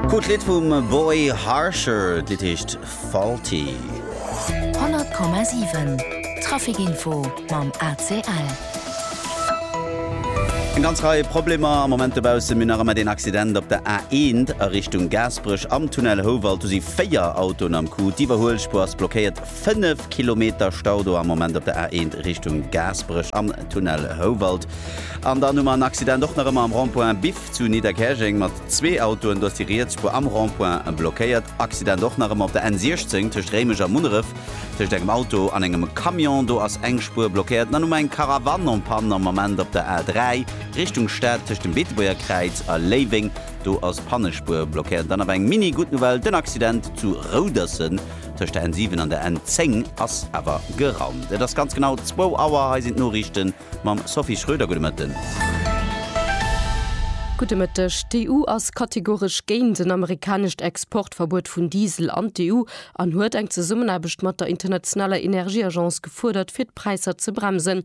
Cool Lidd vum Boy Harsher, d'Lidd heescht Faulty. 100,7 Traficinfo mam ACL. Eng ganz Rei Problemer am Moment dobaussen, mee nach ëmmer deen Accident op der A1 a Richtung Gaasperech am Tunnel Houwald. Do si 4 Autoen am Coup. D'Iwwerhuelspuer ass blockéiert. 5 Kilometer Stau do am Moment op der A1 Richtung Gaasperech am Tunnel Houwald. An dann hu mer en Accident och nach ëmmer am Rond-point Biff. Zu Nidderkäerjeng mat zwee Autoen, do ass déi riets Spuer am Rond-point blockéiert. Accident och nach ëmmer op der N 16 tëscht Réimech a Munneref, tëscht engem Auto an engem Camion, do ass eng Spuer blockéiert. Dann hu mer eng Caravane en panne am Ament op der A 3 Richtung Stad tëscht dem Beetebuerger Kräiz a Léiweng, do ass Pannespuer blockéiert. Dann awer eng Mini Gutt Nouvelle, den Accident zu Rouderssen tëscht der N 7 an der N 10 ass awer gerannt. Et ass ganz genau zwou Auer, hei sinn d'Noriichten. mam Sophie Schröder. Gudde Mëtten. Gudde Mëtteg. D'EU ass kategoresch géint en amerikanescht Exportverbuet vun Diesel an d'EU an huet eng Zesummenaarbecht mat der internationaler Energieagence gefuerdert, fir d'Präisser ze bremsen.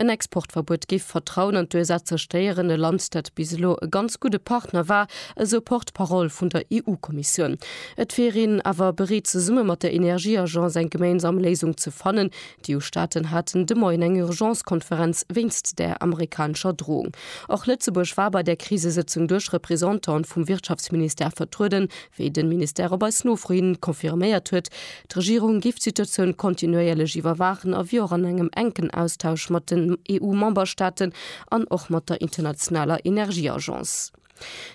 En Exportverbuet géif d'Vertrauen an d'USA zerstéieren, e Land, dat bis elo e ganz gudde Partner war, esou Porte-parole vun der EU-Kommissioun. Et wier een awer bereet zesumme mat der Energieagence eng geméinsam Léisung ze fannen, D'EU-Staaten haten de Moien eng Urgence-Konferenz wéinst där amerikanescher Drohung. Och Lëtzebuerg war bei där Krisesëtzung duerch Représentanten vum Wirtschaftsministère vertrueden, wéi den Ministère op eis Nofro hin confirméiert huet. D'Regierung géif d'Situatioun kontinuéierlech iwwerwaachen a wier och an engem enken Austausch mat den EU-Memberstaaten an och mat der internationaler Energieagence.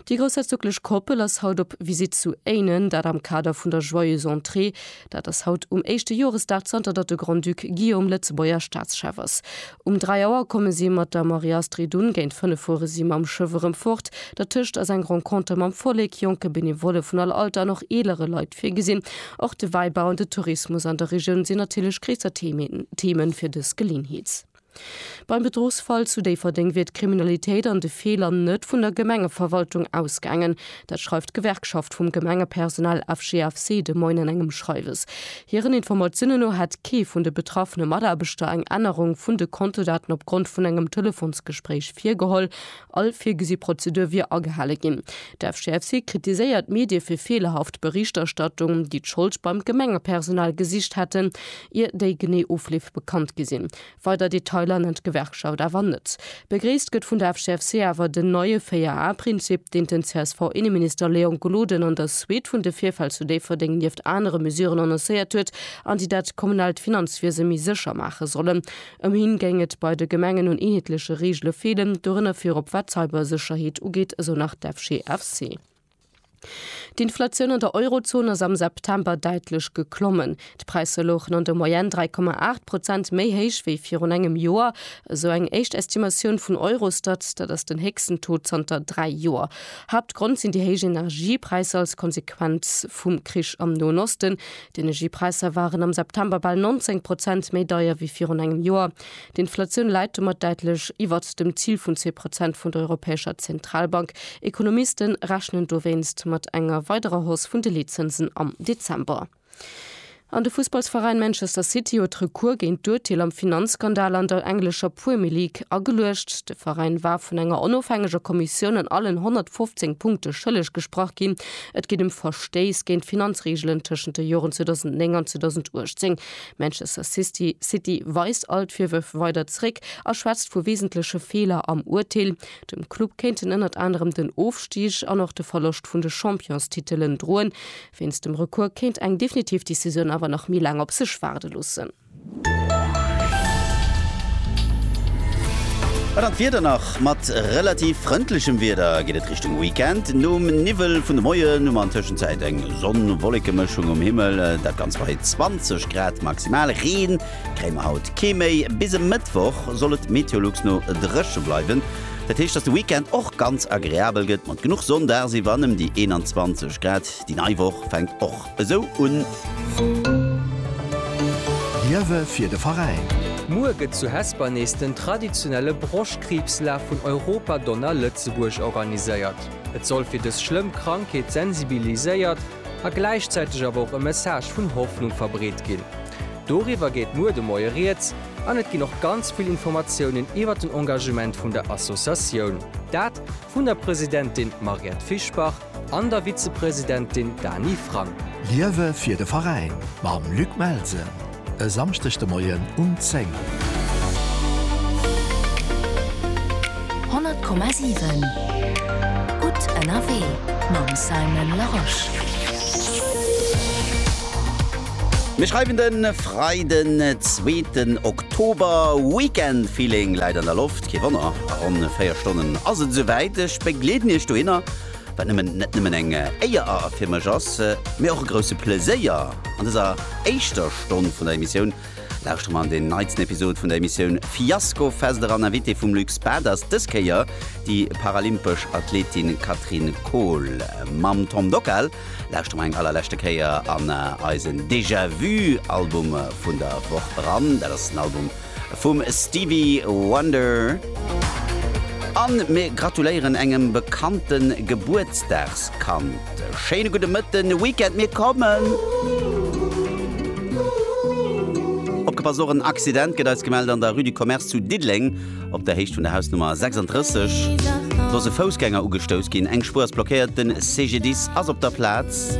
Déi groussherzoglech Koppel ass haut op Visitt zu Éinen, dat am Kader vun der Joyeuse Entrée. Dat ass haut um éischte Joresdag zanter datt de Grand-Duc Guillaume Lëtzebuerger Staatschef ass. Um 3 Auer komme si mat der Marie-Astrid un, géint 5 fuere si mam Schëff erëm fort. Dertëscht ass eng Renconter mam Vollek, jonke Benevolle vun all Alter an och eelere Leit virgesinn. Och de Wäibau an de Tourismus an der Regioun sinn natierlech gréisser Themen fir dës Geleenheet. Beim Bedruchsfall zu Déifferdeng wier d'Kriminalitéit an de Feeler net vun der Gemengeverwaltung ausgaangen. Dat schreift d'Gewerkschaft vum Gemengepersonal FGFC de Moien an engem Schreiwes. Hiren Informatiounen no hätt kee vun de betraffene Mataarbechter eng Ännerung vun de Kontodaten opgrond vun engem Telefonsgespréich virgeholl. All virgesi Prozedur wier agehale ginn. D'FGFC kritiséiert d'Medie fir feelerhaft Berichterstattung, déi d'Schold beim Gemengepersonal gesicht hätten. Ier déi genee Ofleef bekannt gi sinn. Weider Detailer nennt d'Gewerkschaft awer net. Begréisst gëtt vun der FCFC awer den neie 4 A Prinzip, deen den CSV-Inneminister Léon Gloden an der Suite vun de Virfäll zu Déifferdeng nieft anere Mesuren annoncéiert huet an déi dat kommunaalt Finanzwiese méi sécher maache sollen. Ëm hien géing et bei de Gemengen un eenheetleche Reegele feelen, dorënner virop wat d'Cybersécherheet ugeet, esou nach d'FCFC. D'Inflatioun an der Eurozon ass am September däitlech geklommen. D'Präisser louchen an der Moyenne 3,8 Prozent méi héich wéi virun engem Joer, esou eng éischt Estimatioun vun Eurostat. Dat ass den héchsten Taux zanter dräi Joer. Haaptgrond sinn déi héich Energiepräisser als Konsequenz vum Krich am Noen Osten. D'Energiepräisser waren am September bal 19 Prozent méi deier wéi virun engem Joer. D'Inflatioun läit domat däitlech iwwert dem Zil vun zwee Prozent vun der Europäescher Zentralbank. Ekonomiste rechnen dowéinst mat enger weiderer Hausse vun de Leetzënsen am Dezember. An de Fussballsveräin Manchester City huet Recours géint d'Urteel am Finanzskandal an der englescher Premier League ageluecht. De Veräin war vun enger onofhängeger Kommissioun an allen 115 Punkte schëlleg gesprach ginn. Et geet ëm Verstéiss géint d'Finanzreegelen tëschent de Joren 2009 an 2018. Manchester City weist all d'Virwërf weider zréck a schwätzt vu wesentleche Feeler am Urteel. Dem Club kéinten ënnert anerem den Ofstig an och de Verloscht vun de Championstitelen droen. Wéinst dem Recours kéint eng definitiv Decisioun awer nach méi laang op sech waarde loossen. An dann d'Wieder nach. Mat relativ frëndlechem Wieder geet et Richtung Weekend. Nom Niwwel vun de Moien hu mer an Tëschenzäit eng Sonn-Wollekemëschung um Himmel, dat Ganzt bei 20 Grad maximal. Reen kréie mer haut kee méi. Bis e Mëttwoch soll et Meteolux no dréche bleiwen. Dat heescht, dass de Weekend och ganz agreabel gëtt mat genuch Sonn dagsiwwer an ëm déi 21 Grad. Déi nei Woch fänkt och esou un. Liewe fir de Veräin! Muer gëtt zu Hesper nees den traditionelle Broschtkriibslaf vun Europa Donner Lëtzebuerg organiséiert. Et soll fir dës schlëmm Krankheet sensibiliséiert a gläichzäiteg awer och e Message vun Hoffnung verbreet ginn. Doriwwer geet muer de Moie Rieds an et ginn och ganz vill Informatiounen iwwer den Engagement vun der Associatioun. Dat vun der Presidentin Mariette Fischbach an der Vizepresidentin Dany Frank. Liewe fir de Veräin mam Luc Melsen e Samschdeg de Moien um 10. 100,7 Gutt ënnerwee mam Simon Larosche. Mir schreiwen de Freiden, zweeten Oktober. Weekend-Feeling läit an der Loft, kee Wonner, a ronn 4 Stonnen ass et esou wäit. Ech begleeden Iech dohinner. wat nëmmen net nëmmen eng Éier a fir mech ass, mee och e grousse Pleséier. An dëser éischter Stonn vun der Emissioun lauschtere mer an deen neitsten Episod vun der Emissioun Fiasko Fest eran. Invitée vum Luc Spad ass dës Kéier déi paralympesch Athletin Catherine Kohl. Mam Tom Dockal lauschtere mer eng allerleschte Kéier an eisen Déjà-Vu Album vun der Woch eran. Dat ass den Album vum Stevie Wonder an mir gratuléieren engem bekannte Gebuertsdagskand. Schéine gudde Mëtten, Weekend, mir kommen! Opgepasst, och en Accident gëtt eis gemellt an der Rue du Commerce zu Diddeleng op der Héicht vun der Hausnummer 36. Do ass e Foussgänger ugestouss ginn, eng Spuer ass blockéiert, de CGDIS ass op der Plaz.